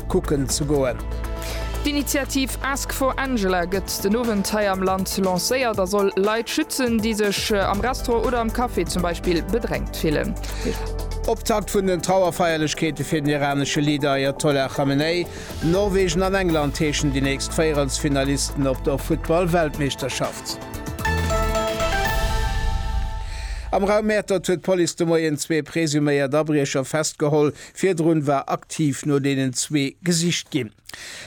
kucken ze goen. D'Initiativ Ask for Angela gëtt den Owend hei am Land lancéiert a soll Leit schützen, déi sech am Restaurant oder am Café zum Beispill bedrängt fillen. Optakt vun den Trauerfeierlechkeete fir den iranesche Leader Ayatollah Khamenei. Norwegen an England heeschen déi nächst Véierelsfinalisten op der Futtball-Weltmeeschterschaft. Am Raum Mäertert huet d'Police de Moien zwee presuméiert Abriecher festgeholl, Virdrun war aktiv no deenen zwee gesicht ginn.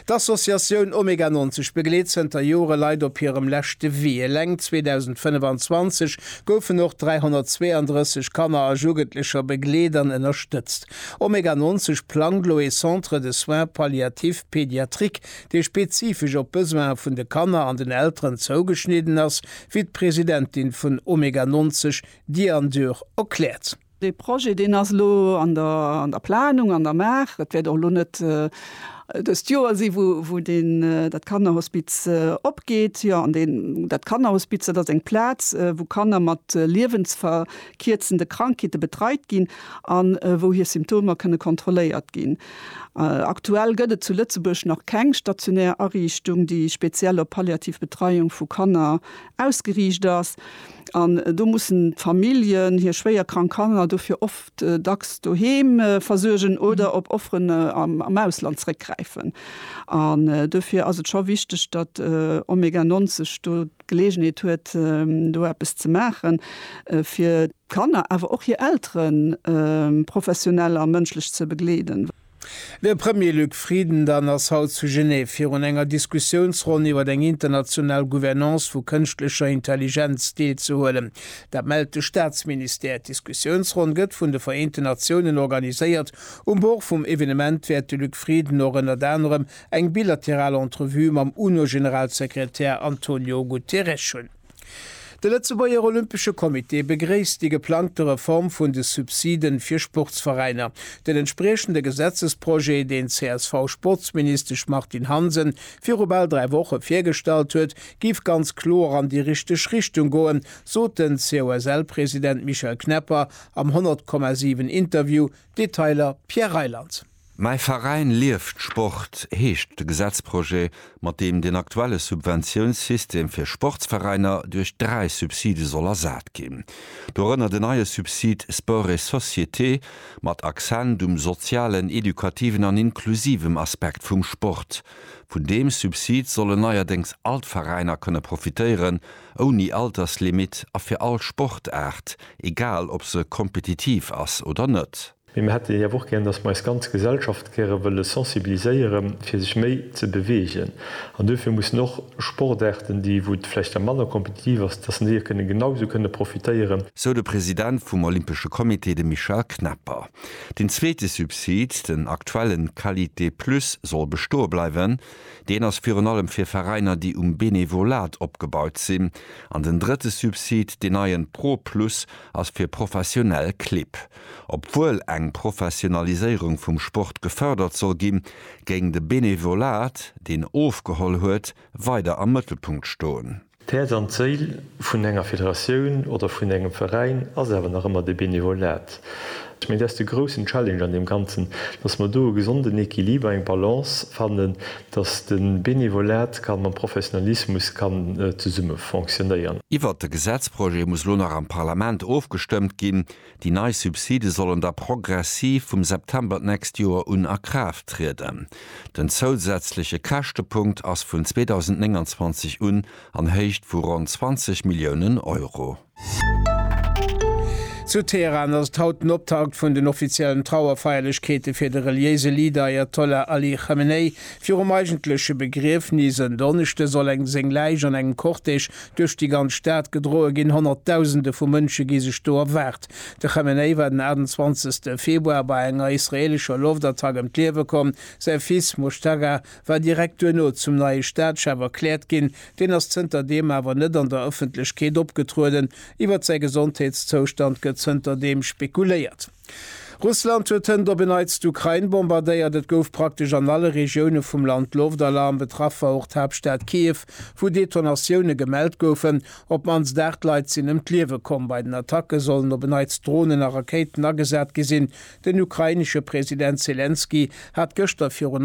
D'Associatioun Omega 90 begleet zënter Jore Leit op hirem leschte Wee. Eleng 2025 goufen och 332 Kanner a Jugendlecher begleet an ënnerstëtzt. Omega 90 plangt lo ee Centre de soins palliatifs pédiatriques, dee spezifesch op d'Besoine vun de Kanner an den Elteren zougeschnidden ass, wéi d'Presidentin vun Omega 90, Diane Dürr, erkläert. Dee Projet, deen ass elo an der Planung, an der Maach. Et wäert och elo net dëst Joer sinn, wou dat Kannerhospiz opgeet. Jo, an dat Kannerhospiz, dat ass eng Plaz, wou Kanner mat liewensverkierzende Krankheete betreit ginn a wou hir Symptomer kënne kontrolléiert ginn. Aktuell gëtt et zu Lëtzebuerg nach keng stationär Ariichtung, déi speziell op palliativ Betreiung vu Kanner ausgeriicht ass an do mussen d'Familljen hir schwéier krank Kanner dofir oft dacks doheem versuergen oder op Offeren am Ausland zréckgräifen. An dofir ass et scho wichteg, datt Omega 90 do d'Geleegenheet huet, do eppes ze maachen, fir d'Kanner, awer och hir Elteren professionell a mënschlech ze begleeden. De Premier Luc Frieden dann ass haut zu Genève virun enger Diskussiounsronn iwwer eng international Gouvernance vu kënschtlecher Intelligenz deelzehuelen. Dat mellt de Staatsministère. D'Diskussiounsronn gëtt vun de Vereenten Natiounen organiséiert. Um Bord vum Evenement wäert de Luc Frieden och ënnert anerem eng bilateral Entrevue mam UNO-Generalsekretär Antonio Guterres hunn. De Lëtzebuerger Olympesche Comité begréisst déi geplangte Reform vun de Subside fir Sportsveräiner. Den entspriechende Gesetzesprojet, deen d'CSV-Sportsministesch Martine Hansen viru bal dräi Woche virgestallt huet, géif ganz kloer an déi richteg Richtung goen, sot den COSL-President Michel Knepper am 100,7 Interview, Detailer Pierre Reyland. Mäi Veräin lieft Sport heescht de Gesetzprojet, mat deem den aktuelle Subventiounssystem fir Sportsveräiner duerch dräi Subside soll ersat ginn. Dorënner den neie Subsid Sport et Société, mat Accent um sozialen, edukativen an inklusivem Aspekt vum Sport. Vun deem Subsid sollen neierdéngs all d'Veräiner kënne profitéieren, ouni Alterslimit a fir all Sportaart, egal ob se kompetitiv ass oder net. Mee mir hätte hief och gären, dass mer eis ganz Gesellschaft gäre wëlle sensibiliséiere fir sech méi ze beweegen. An duerfir mussen och Sportaarten, déi wou et vläicht da manner kompetitiv ass, dass en déi och kënne genau esou kënne profitéieren. Sou de President vum Olympesche Comité, de Michel Knepper. Deen zweete Subsid, den aktuellen Qualité Plus, soll bestoe bleiwen. Deen ass virun allem fir Veräiner, déi um Benevolat opgebaut sinn. An den drëtte Subsid, deen neien Pro Plus, ass fir professionell Clibb. Obwuel eng Professionaliséierung vum Sport gefërdert soll ginn, géing de Benevolat, deen ofgeholl huet, weider am Mëttelpunkt stoen. D'Häerz an d'Séil vun enger Federatioun oder vun engem Veräin ass awer nach ëmmer de Benevolat. Ech mengen, dat ass de groussen Challenge an deem Ganzen, dass mer do e gesonden Equiliber, eng Balance fannen, dass de Benevolat ka mam Professionalismus kann zesumme fonctionnéieren. Iwwert de Gesetzprojet muss elo nach am Parlament ofgestëmmt ginn. Déi nei Subside sollen da progressiv vum September d'nächst Joer un a Kraaft trieden. Den zousätzleche Käschtepunkt ass vun 2029 un an Héicht vu ronn 20 Milliounen Euro. Zu Teheran ass et haut den Optakt vun den offiziellen Trauerfeierlechkeete fir de reliéise Leader Ajatollah Ali Chamenei. Virum eigentleche Begriefnis en Donneschde soll eng seng Läich an engem Cortège Duerch déi ganz Stad gedroe ginn, Honnertdausende vu Mënsche gi sech do erwaart. De Khamenei war den 28 Februar bei enger israeelescher Loftattack ëm d'Liewe komm. Säi Fils Mojtaga war direkt duerno zum neie Staatschef erkläert ginn. Deen ass zënter deem awer net an der Ëffentlechkeet opgetrueden. Iwwer säi Gesondheetszoustand gëtt zënter deem spekuléiert. Russland huet hënt op e Neits d'Ukrain bombardéiert. Et gouf praktesch an alle Regioune vum Land Loftalarm. Betraff war och d'Haaptstad Kiew, wou Detonatioune gemellt goufen. Op d'mannst 8 Leit sinn ëm d'Liewe komm. Bei den Attacke sollen op e Neits Dronen a Rakéiten agesat gi sinn. Den ukrainesche President Selenskyj hat gëschter virun